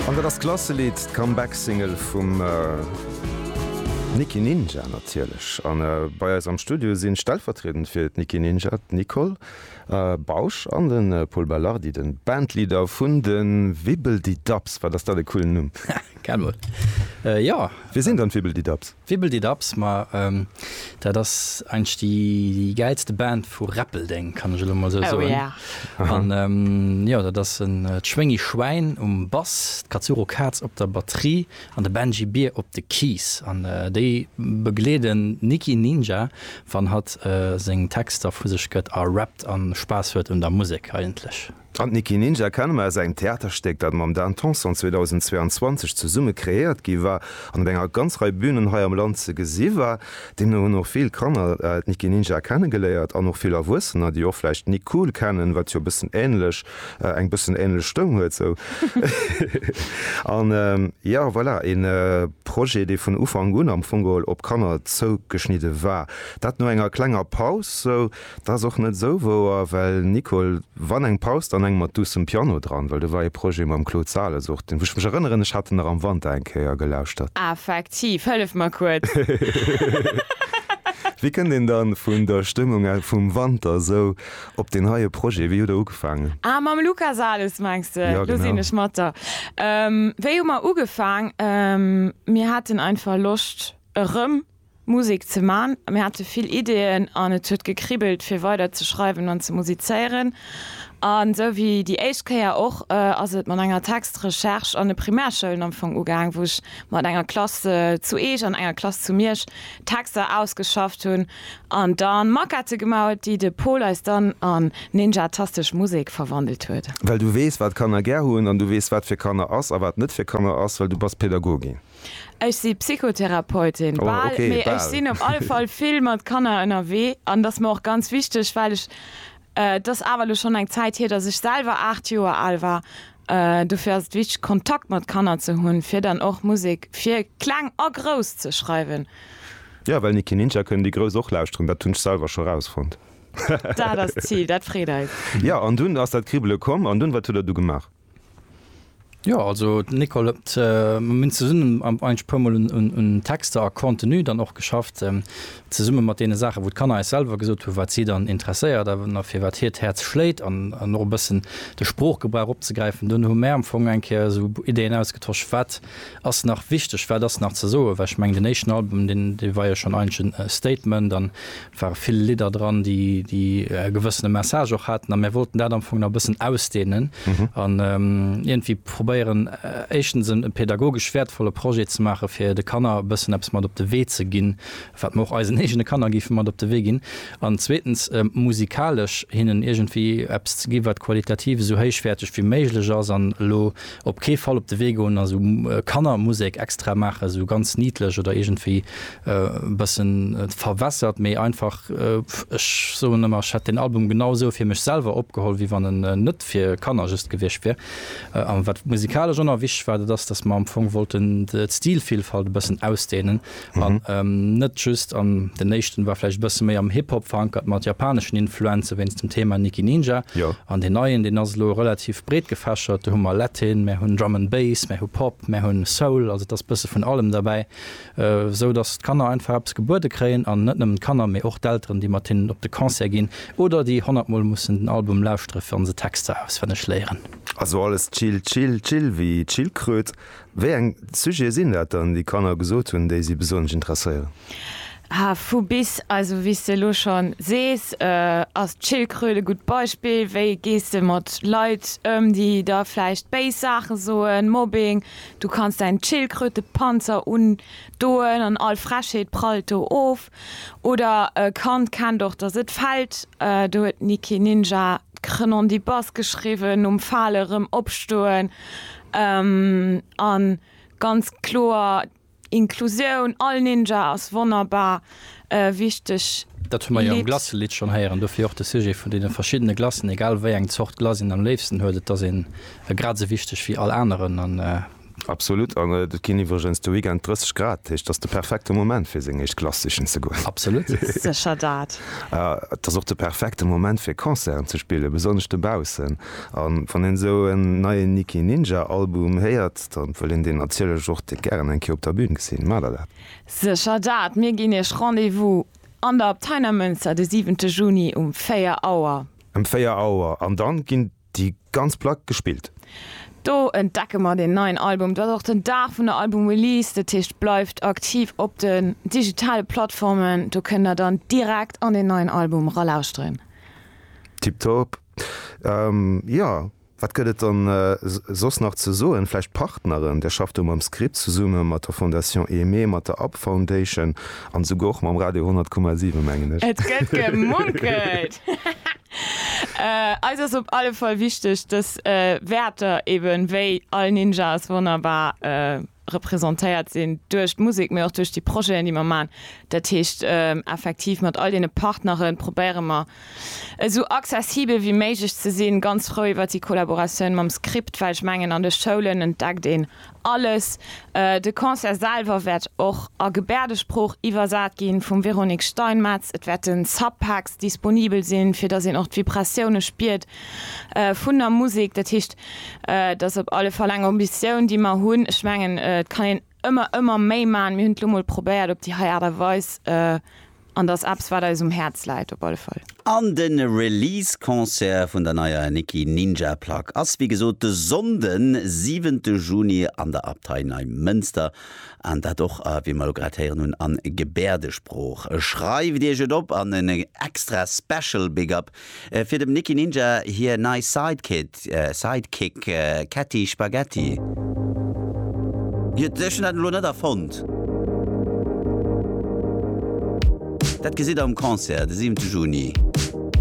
An dat ass d'Klasselidd, d'Comeback-Single vum Nicky Ninja natierlech. A bei eis am Studio sinn, stellvertriedend fir d'Nicky Ninja, d'Nicole Bausch an de Pol Belardi, de Bandleader vun de Wibbeldidabbs. Wat ass dat e coolen Numm! Gell mol, jo. Wie sinn dann d'Wibbeldidabbs? Wibbeldidaps, ma dat ass eigentlech déi gäilste Band vu Räppeldeng, kann ech elo emol esou soen. An jo, dat ass d'Schwéngi Schwäin um Bass, d'Katsuro Kaz op der Batterie an de Benji Bier op de Keys. An déi begleeden d'Niki Ninja, wann hatt seng Texter vu sech gëtt a rappt a Spaass huet un der Musek eigentlech. An d'Nicky Ninja kenne mer aus engem Theaterstéck, dat mam Dan Tanson 2022 zesumme kreéiert gi war an op enger ganz Rei Bünen hei am Land ze gesi war. Deemno hunn och vill Kanner d'Nicky Ninja kenne geléiert an och vill Erwuessener, déi och vläicht d'Nick Cool kennen, wat jo e bëssen änlech, eng bëssen änlech Stëmm huet sou. An jo, voilà, e Projet, dee vun Ufank un am Fong geholl op Kanner zougeschnidde war. Dat no enger klenger Paus sou. Dat ass och net esou wouer, well Nicole, wann eng Paus, dann eng mat duussem Piano dran, well do war ee Projet mam Claude Sales och, deen, wou ech mech erënneren, ech hat en nach am Wanter eng Kéier gelauschtert. Effektiv, hëllef mer kuerz. Wéi kënnt een dann vun der Stëmmung vum Wanter esou op deen heie Projet? Wéi hutt Der ugefaangen? Ah, mam Luca Sales mengs de? Jo, Lo sinn genau. ech mat der. Wéi hu mer ugefaang? Mir haten einfach Loscht erëm Musek ze man. Mir hate vill Ideeën an et huet gekribbelt fir weider ze schreiwen an ze musizéieren. An esou wéi déi éischt Kéier och ass et mat enger Textrecherche an de Primärschoulen am Fong ugaang, wou ech mat enger Klass zu Eech an enger Klass zu Miersch Texter ausgeschafft hunn an da Maquette gemaut, déi de Pol eis dann an ninjatastesch Musek verwandelt huet. Well du weess wat Kanner gär hunn an du weess wat fir Kanner ass a wat net fir Kanner ass, well du bass Pädagogin. Ech si Psychotherapeutin, bal, mee ech sinn op alle Fall vill mat Kanner ënnerwee an dat ass mer och ganz wichteg, well ech, et ass awer elo schonn eng Zäit hier, datt ech selwer 8 Joer al war. Dofir ass et wichteg, Kontakt mat Kanner ze hunn, fir dann och Musek fir Kleng a Grouss ze schreiwen. Jo, well Niki Ninja kënnen déi Grouss och lauschteren, dat hunn ech selwer scho rausfonnt. Dat ass d'Zil, dat freet eis. Jo, an dunn ass dat Kribbele komm. An dunn, wat hutt Der du gemaach? Jo also d'Nicole huet, mir hunn zesummen eigentlech e puer mol un Texter a Contenu dann och geschafft, zesummen mat deene Saachen wou d'Kanner eis selwer gesot hunn wat si dann interesséiert a fir wat hiert Häerz schléit an och e bëssen de Sproochgebrauch opzegräifen. Dunn hu mär am Fong eng Kéier esou Ideen ausgetosch wat ass nach wichteg, wat ass nach ze soen, well ech mengen den éischten Album dee war jo schonn eigentlech e Statement an ware vill Lidder dran, déi déi e gewëssene Message och haten a mär wollten dat am Fong nach e bëssen ausdehnen an iergendwéi probéieren, éischtens e pädagogesch wäertvolle Projet ze maache fir de Kanner e bëssen eppes mat op de Wee ze ginn, wat mer och eisen eegene Kanner géife mat op de Wee ginn an zweetens musikalesch hinnen iergendwéi eppes ze gi wat qualitativ esou héichwäerteg wéi méiglech ass an elo Op kee Fall op de Wee goen a sou Kannermusek extra maachen, sou ganz niedlech oder iergendwéi e bëssen verwässert, mee einfach, ech soen ëmmer, ech hätt deen Album genau esou fir mech selwer opgeholl, wéi wann en net fir Kanner just gewiescht wier. A wat musikalesch ëmmer wichteg war, dat ass, dass mer am Fong wollten d'Stilvilfalt e bëssen ausdehnen, An net just an, den éischten war vläicht e bësse méi am Hip Hop verankert mat japaneschen Influenze wéinst dem Thema Nicki Ninja. An deen neien, deen ass elo relativ breet gefächert. Do hu mer Latin, mär hunn Drum and Bass, mär hu Pop, mär hunn Soul, also et ass bësse vun allem derbäi, esou datt d'Kanner einfach eppes gebuede kréien. An net nëmmen d'Kanner, mee och d'Elteren, déi mat hinnen op de Concert ginn oder déi honnert Mol mussen den Album lauschtere fir an se Texter auswenneg léieren. Also alles chill, chill, chill wéi Chillkröt. Wéi eng Sujete sinn dat dann, déi Kanner gesot hunn, déi si besonnesch interesséieren? Ha, vu bis. Also wéi s de elo scho sees, ass d'Schildkröt e gutt Beispill. Wéi gees de mat Leit ëm, déi der vläicht béis Saache soen, Mobbing, du kanns däin Schildkrötepanzer undoen an all Frechheet prallt do of. Oder e Kand kennt och dass et fällt, do huet Niki Ninja d'Krenondibas geschriwwen, nom Fale rëm opstoen an ganz kloer Inklusioun, all Ninja ass wonnerbar wichteg. Dat hu mer jo am Glacelidd schonn héieren, dofir och de Sujet vun deene verschiddene Glacen, egal wéi eng Zort Glace een am léifsten huet, et ass een grad esou wichteg wéi all aneren. Absolut, an et ginn iwwregens de Weekend 30 Grad, dat heescht, et ass de perfekte Moment fir seng éischt Klass sichen ze goen. Absolut. Sécher dat. Et ass och de perfekte Moment fir Concerten ze spillen, besonnesch dobaussen. A wann een esou en neien Nicky Ninja Album héiert, da wëll een deen natierlech och dee gären eng Kéier op der Bün gesinn. Maacht der dat? Sécher dat. Mir ginn iech Rendez-vous an der Abtei Neimënster de 7 Juni um 4 Auer. Em 4 Auer, an dann ginn. Déi ganz Plack gespillt. Do entdecke mer den neien Album. Et ass och den Dag vun der Album-Release. Dat heescht, bleift aktiv op den digitale Plattformen. Do kënnt der dann direkt an den neien Album eralauschteren. Tiptop. Jo, wat gëtt et dann soss nach ze soen? Vläicht d'Partneren. Där schafft do mam Script zesumme mat der Fondation Aimée, mat der Up Foundation an esouguer och mam Radio 100,7, mengen ech. Et gëtt gemunkelt. Eis ass op alle Fall wichteg, dass Wäerter eben wéi All Ninjas wonnerbar representéiert sinn duerch d'Musek, mee och duerch déi Projeten, déi mer maachen. Dat heescht, effektiv mat all deene Partnere probéiere mer, esou accessibel wéi méiglech ze sinn. Ganz frou iwwert déi Collaboratioun mam Script, well ech mengen, an de Schoulen entdeckt een Alles. De Concert selwer wäert och a Gebäerdesprooch iwwersat gi vum Véronique Steinmetz. Et wäerte Subpacks disponibel sinn, fir datt een och d'Vibratioune spiert vun der Musek. Dat heescht, et ass op alle Fall eng Ambitioun, déi mer hunn. Ech mengen, et kann een ëmmer, ëmmer méi maachen. Mir hunn et elo mol probéiert op déi hei Aart a Weis. An dass eppes wat eis um Häerz läit op alle Fall. An de Release Concert vun der neier Nicky Ninja Plack ass wéi gesot de Sonnden siwente Juni an der Abtei Neimënster an dat och wéi mer elo grad héieren hunn an Gebäerdesprooch. Schreift iech et op an en extra Special Big Up Fir dem Nicky Ninja hir nei Sidekid, Sidekick, Ketty Spaghetti. Ech hunn dat elo net erfonnt. Dat gesitt der um Concert de siwente Juni.